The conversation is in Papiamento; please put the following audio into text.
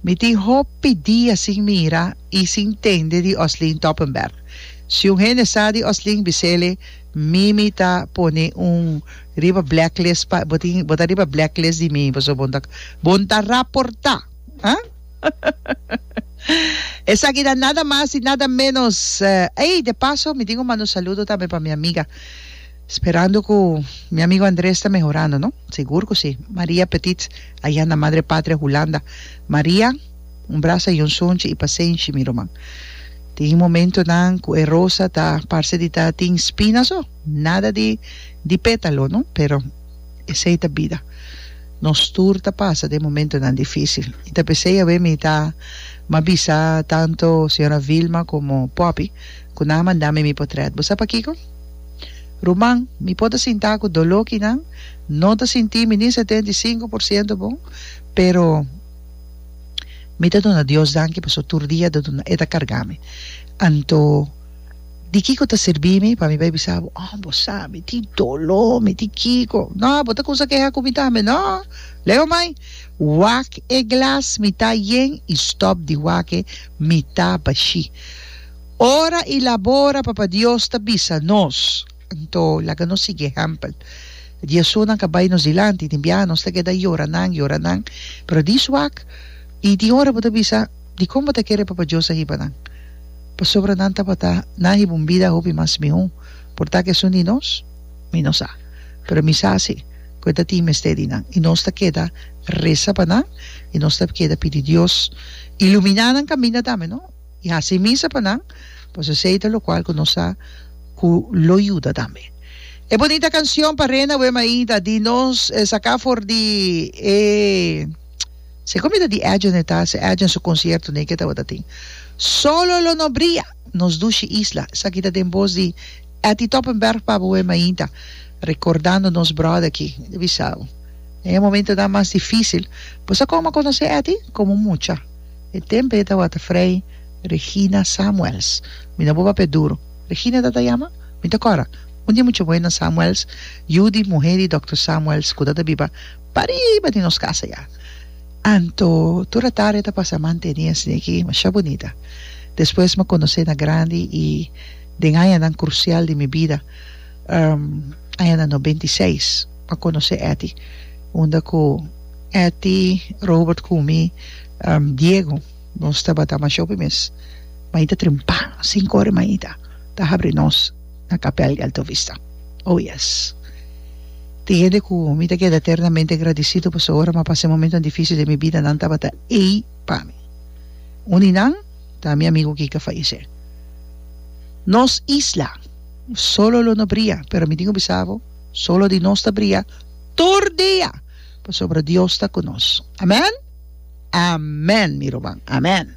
Mi tin hopi dia sin mira i sin tende di Oslin Toppenberg. Si un hende sa di Oslin bisele mi mi ta pone un riba blacklist pa bo tin bo ta riba blacklist di mi pasobra bon ta bon ta raporta ha esaki ta nada mas i nada menos ey de paso mi tin un manda un saludo tambe pa mi amiga Sperando cu mi amigo Andres ta mehorando, no? Sigur cu si. Maria Petits, ayá na Madre Patria Hulanda. Maria, un brasa y un sonchi y pasenshi, mi ruman. Tin momentonan cu e rosa ta parce di ta tin spina so, nada di di pétalo, no? Pero esey ta bida. Nos tur ta pasa den momentonan difícil. Y ta pesey awe mi ta ma bisa tanto señora Vilma como Poppy cu nan a manda mi mi potret. Bo sa pakico? Ruman, mi por ta sintá ku doló kinan no ta sintí mi ni setenta i sinku por siento bon, pero mi ta duna Dios danki pasobra tur dia e ta kargá mi. Anto, di kiko ta sirbi mi pa mi bai bisa bo, Oh, bo sa, mi tin doló, mi tin kiko. Nò, bo ta kumsa keha ku mi tambe. Nò, Leo mai, wak e glas, mi ta yen, i stòp di wak e, mi ta bashí. Ora i labora, Papa Dios ta bisa nos. Anto, laga nos sigui e ehèmpel. Di esunnan ka bai nos dilanti, den biaha nos ta keda yora nan, yora nan, pero dis wak i tin ora bo ta bisa dikon bo ta kere Papa Dios a hiba nan, pasobra nan tabata nan a hiba un bida hopi mas mihó. Por tak esun di nos? Mi no sa, pero mi sa si ku e ta tin mester di nan. I nos ta keda resa pa nan i nos ta keda pidi Dios ilumina nan kaminda tambe, no? I hasi misa pa nan, pues esei ta lokual ku nos sa ku lo yuda tambe. E bunita kanshon pa Rena Wem Aida di nos saká for di e si komo ta di Edgen e ta, si Edgen su konsierto nei ke tabata tin Solo lo no bria nos dushi isla esaki ta den bos di Etty Toppenberg Pabo Wem Ainda rekordando nos bròda aki di bisa bo en e momentonan mas difísil bo sa kòm a konosé Etty komo mucha. E tempe e tawata Fray Regina Samuels. Mi no bo papia duro. Regina ta ta yama? Mi ta kora. Un dia mucha buena Samuels, yu di muhé di Dòkter Samuels ku ta ta biba pariba di nos kasa ya. Anto tur a tarde ta pasa manteni asina aki mashá bunita. Despues m'a konosé na grandi i den añanan krusial di mi bida, añanan nobenta i seis, m'a konosé Etty unda ku. Etty, Robert cu mi Diego nos tabata masho pi mes. Maita trimpa sin core maita ta habri nos na capel di Alto Vista. Oh yes. Tin hende cu mi ta keda eternamente agradicido pasobra ora m'a pasa e momentonan dificil den mi bida nan tabata ey pa mi. Un di nan ta mi amigo Kika a fayece. Nos isla solo lo no bria pero mi tin un bisabo solo di nos ta bria tur dia. Pasobra Dios ta cu nos. Amen? Amen, mi ruman. Amen.